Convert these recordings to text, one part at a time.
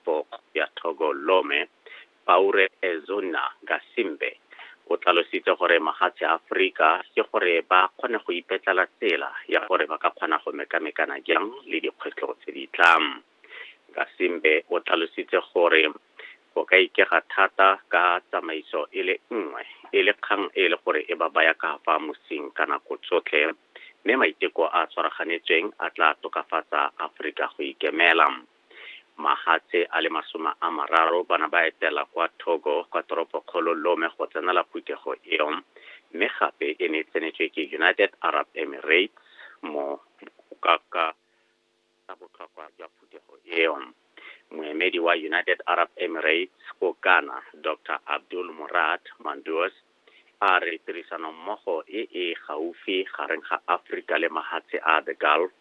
Bok ya Thogo Lome, Paure Ezonna Gasimbe, o tlalositse gore mahatshe a Aforika ke gore ba kgone go ipetlela tsela ya gore ba ka kgona go mekamekana jang le dikgwetlho tse di tlang. Gasimbe o tlalositse gore go ka ikega thata ka tsamaiso e le nngwe e le kgang e le gore e ba baya ka fa mosing ka nako tsotlhe, mme maiteko a tshwaraganetsweng a tla tokafatsa Aforika go ikemela. Magatse a le masome a mararo ba ne ba etela kwa Togo kwa toropokgolo Lome go tsenela phuthego eo, mme gape e ne e tsenetswe ke United Arab Emirates mo ka ka ka botlhokwa jwa phuthego eo. Moemedi wa United Arab Emirates ko Ghana, Doctor Abdul Murad Manduos, a re tirisanommogo e e gaufi gareng ga Afrika le mahatshe a the Gulf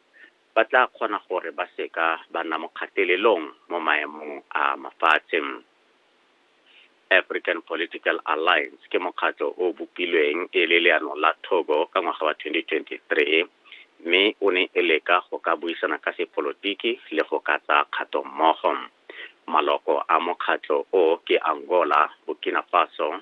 ba tla kgona gore ba seka ba nna mo kgatelelong mo maemong a mafatshe. African Political Alliance ke mokgatlho o bopilweng e le leano la Togo ka ngwaga wa 2023 mme o ne e leka go ka buisana ka sepolotiki le go ka tsaya kgato mmogo. Maloko a mokgatlho o ke Angola, Burkina Faso,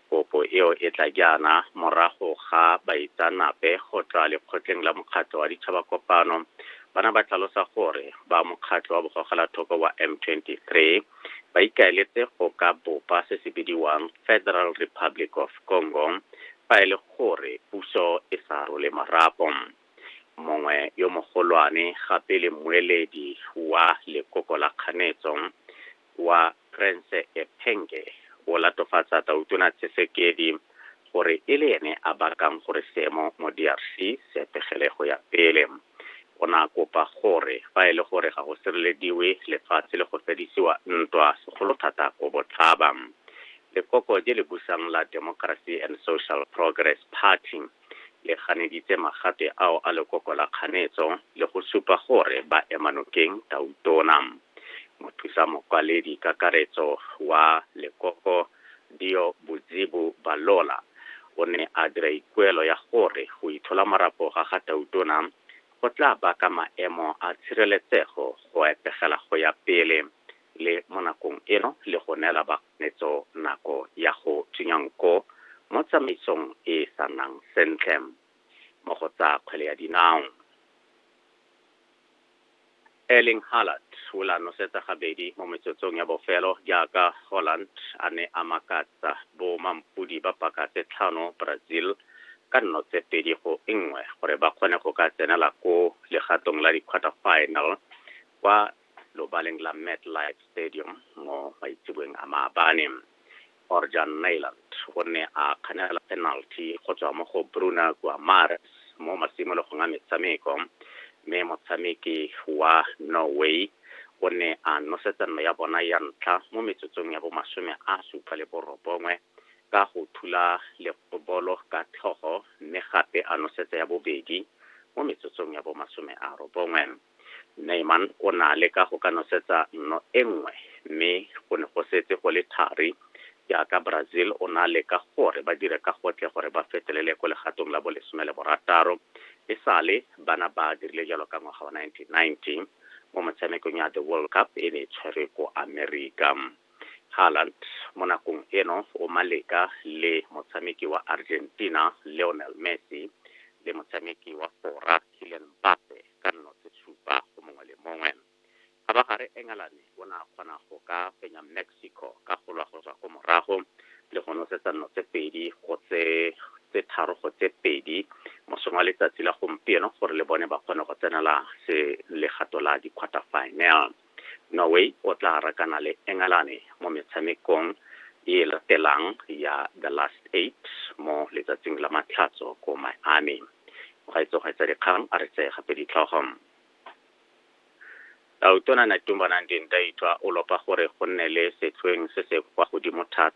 Kopo eo e tla jaana morago ga baitsaanape go tswa lekgotleng la Mokgatlho wa Ditšhabakopano ba na ba tlhalosa gore ba mokgatlho wa bogogelathoko wa M23 ba ikaeletse go ka bopa se se bidiwang Federal Republic of Congo fa e le gore puso e sa role marapo. Mongwe yo mogolwane gape le mmueledi wa lekoko la kganetso wa Krense Ephenge o latofatsa Tautona Tshisekedi gore e le ene a bakang gore seemo mo DRC se etegele go ya pele. O ne a kopa gore fa e le gore ga go sirelediwe lefatshe le go fedisiwa ntwa segolo thata ko Botlhaba. Lekoko je le busang la Democracy and Social Progress Party, Le ganeditse magate ao a lekoko la kganetso le go supa gore ba ema nokeng Tautona. Mothusa Mokwaledi Kakaretso wa lekoko Dio Bodzibu Balola o ne a dira ikuelo ya gore go ithola marapo ga ga Tautona go tla baka maemo a tshireletsego go etegela go ya pele le mo nakong eno le go neela baganetso nako ya go tsunya nko mo tsamaisong e e sa nnang sentle mo go tsa kgwele ya dinao. Erling Haaland o la nosetsa gabedi mo metsotsong ya bofelo jaaka Holland a ne a makatsa bo mampodi ba paka tse tlhano Brazil ka nno tse pedi go nngwe gore ba kgone go ka tsenela ko legatong la di-quarter final kwa lobaleng la MetLife Stadium mo maitseboeng a maabane. Orjan Nyland o ne a kganela penalty go tswa mo go Bruna Guimares mo masimologong a metshameko, mme motshameki wa Norway o ne a nosetsa nno ya bona ya ntlha mo metsotsong ya bomasome a supa le borobongwe ka go thula lekgobolo ka tlhogo mme gape a nosetsa ya bobedi mo metsotsong ya bomasome a robongwe. Naaman o ne a leka go ka nosetsa nno e nngwe, mme go ne go setse go le thari, jaaka Brazil o ne a leka gore ba dire ka gotlhe gore ba fetelele ko legatong la bolesome le borataro, e sale ba na ba dirile jalo ka ngwaga wa 1990 mo motshamekong ya The World Cup e ne e tshwerwe ko Amerika. Haaland mo nakong eno o maleka le motshameki wa Argentina Lionel Messi le motshameki wa Fora Kylian Mbappe. ka nno tse supa go mongwe le mongwe. Kgabagare Engelane o ne a kgona go ka fenya Mexico ka go lwa go tswa ko morago le go nosetsa nno tse pedi go tse tse tharo go tse pedi mosong wa letsatsi la gompieno gore le bone ba kgone go tsenela se legato la di-quarter final. Norway o tla rakana le Engalane mo metshamekong e e latelang ya The Last Eight mo letsatsing la Matlhatso ko Miami. Mogaetsogaetsa dikgang a re tseye gape ditlhogo. Tautona Netumbo Nandi-Ndaitwah o lopa gore go nne le setlhoeng se se kwa godimo thata